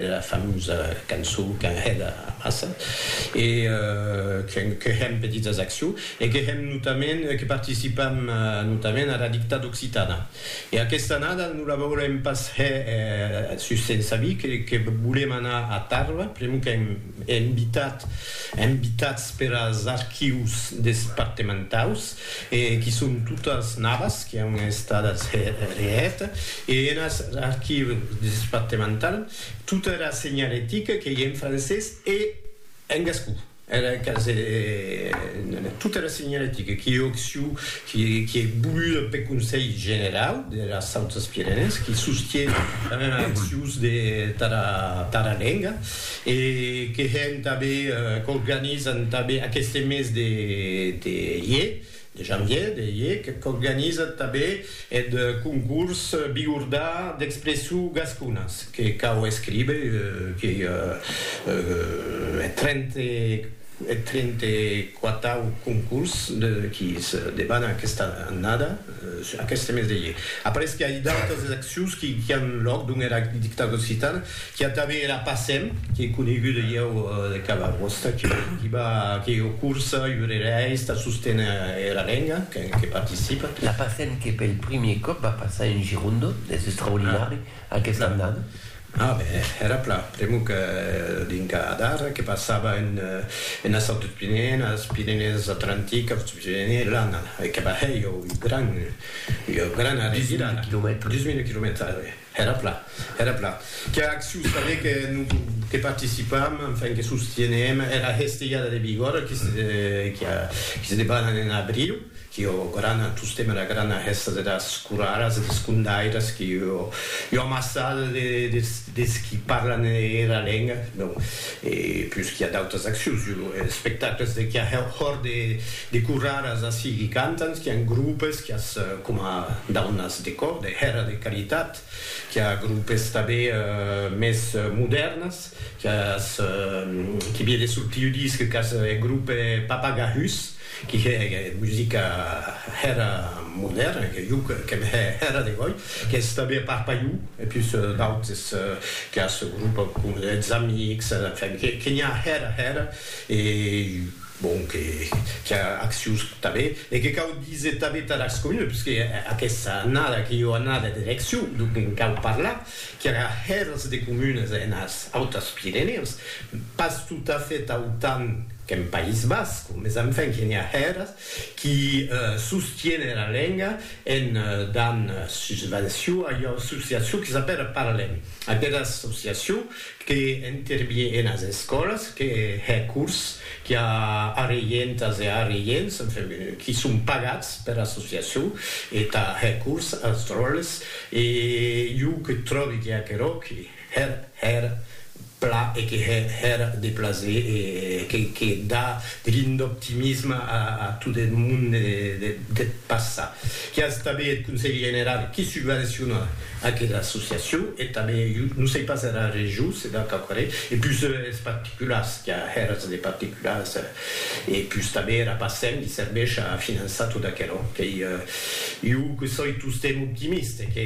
la famosa cançon qu'an hèt amassa, e que hèm pedit as Acció e que hèm notament, que participam notament ara dictada occitana. E aquesta annada non la volem pas hèr sus Sensavic, que volem anar a Tarba, pr'amor qu'an invitat, invitats per as archius despartementaus, e qui son totas navas qui an estadas hèr e hèt, e enas archives despartemental tota era senhalética qu'ei en francés e en gascon, era quasi tota era senhalética qui ei occiu, qui ei voluda peth Conselh Generau deras Autas Pirenèes, qui sostie damb era accius de tara lenga. E que hèn tanben, qu'organizan tanben aqueste mes de de ier, de janvier, de ier, qu'organizan tanben eth concurs Biordà d'expression gasconas, que cau escriber que eth trente eth trente quatau concurs de qui se debana aquesta annada. Sus aqueste mes de ier, aparesque a idalh des accions qui an lòc dons era dictada occitana, qui a tanben era PACEM, qui ei coneguda ieu de cada costat, qui va que o cursa, urereis, tà sosténer era lenga, que participa. La PACEM que pel primier còp va passar en Gironde, es extraordinari, aquesta annada. A ben, èra pla, pr'amor que dinga adar que passava ena sòrt des Pirenèen, as Pirenèes Atlanticas, des Pirenèes, l'ana, e que bahèi ua gran, ua grana revirada, dus mil quilomètres, dus mil quilomètres, a ben, èra pla, èra pla, qu'era accion tanben que non, que participam, enfin, que sostienem, era hestelhada de Bigòrra, qui se, qui se debana en abriu, Io grana tostemp era grana hèsta deras coraras e des condairas que io io amassada de des des qui parlan era lenga, donc, e pus qu'i a d'autas accions, io espectacles de qu'i a hè hòr de de coraras ací qui cantan, qu'i a en groupes, qu'i as coma daunas de còr, de hèra de caritat, qu'i a groupes tanben mès modèrnes, qu'i as qu'i vie de sortir disc, qu'i as hè groupe Papagahus, qui hè musica hèra modèrna, que jo qu'èm hè hèra de gòi, qu'es tanben a part Paiu e pus d'autes que as ce grup coma des amics, enfin, que n'i a hèra hèra e bon, que qu'i a accius tanben e que cau díser tanben Tarascomina, puisque aquesta annada que jo anada d'eleccion, donc en cau parlar qu'era hèrs de comunes enes Autas Pirenèus, pas totafèt autant qu'en País Basc, mes enfin que n'i a hèrs qui sostiene era lenga en dan susvenció a ua associacion que s'apèra Parlem, aquera associacion que intervie enes escòlas, que hè cors, qui a arreientas e arreients, enfin, qui son pagats pera associacion e tà hè cors als dròlles. E jo que tròbi que aquerò que hèr hèr pla e que hè hèr de plaser e que que da de lin d'optimisme a a tot eth monde de deth passat. Que as tanben eth Conselh Generau que subvenciona aquera associacion e tanben jo non sei pas era Region se da quauquarren e pus es particulars que a hèrs de particulars. E pus tanben era Pacem li serveish a finançar tot aquelo qu'ei iu que soi tostemp optimiste e que.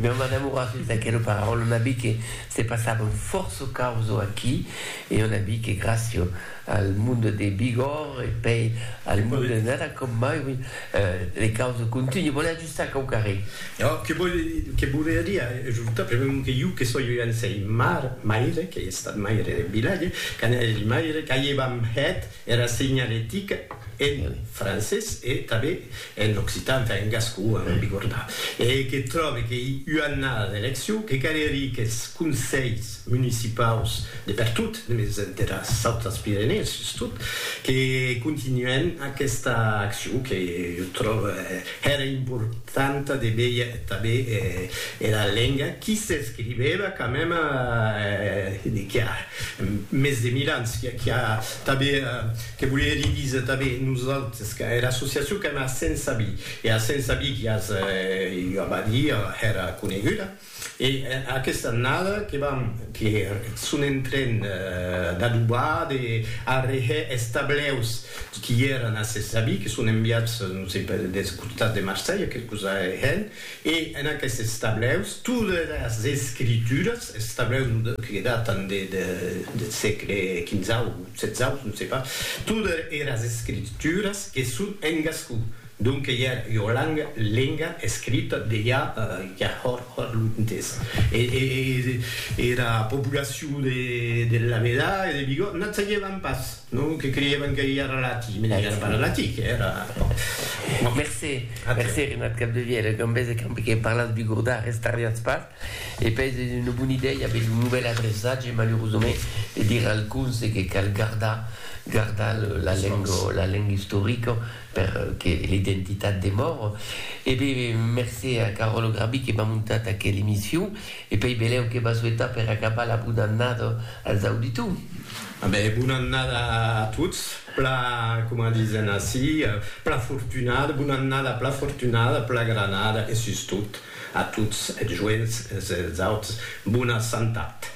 Non m'enamoras sus d'aquelo pararòl, on a vist que se passavan fòrça causo aquí e on a vist que gràcia al monde de Bigòrre e pei al monde de Nada com mai, oui, les causes continuent. sac au carré. Ò, que vòl, que volia dire ajortar, pr'amor que jo que soi un sei mar, maire, qu'ei estat maire de vilatge, quand eri maire, qu'aievam hèt era segnaletica en francés e tanben en occitan, enfin en gascon, en bigornà, e que tròbe qu'ei ua annada d'eleccion, que calerie qu'es conselhs municipaus de pertot, mès deras autras Pirenèes sustot, que continuèn aquesta accion que jo tròbe Hèra importanta de veir tanben era lenga qui s'escrivèva quand mème qu'i a mès de mil ans, qu'i a tanben, que volie hèr disa tanben nosaltres, qu'a era associacion qu'èm a Sensabí, e a Sensabí qu'i as ua badia hèra coneguda. E aquesta annada que vam que son en tren d'adobar, de arrehè es tableus qui èran a se sabi, que son enviats, non sei per, des costats de Marselha, quelcos arrehèn, e en aquestes tableus todas es escrituras, es tableus que datan de deth sègle quinzau, setzau, non sei pas, todas eras escrituras que son en gascon. Donque ja ua langa, lenga, escrita de ja ja hòr hòr lontes. E era populacion de de Laveda e de Bigòt n'ac sagevan pas, non? Que creievan que ja era latin, mès ja era pas latin, que era, bon. Mercé, mercé Renat Capdevièlh, e qu'en bèse qu'amb que parlatz bigordà restarriatz pas, e pèi es ua bona idèia aver lo novèl adreçatge, malerosament, de dire al conse que cal gardar gardar la lenga la lenga istorica per que l'identitat demòre e be mercé a Caròlo Grabi que m'a montat aquel emission e pei belèu que va souetar per acabar la bona annada als auditors. A be bona annada a tots, pla coma disen ací, pla fortunada, bona annada, pla fortunada, pla granada e sustot a tots eths joents e eths auts bona santat.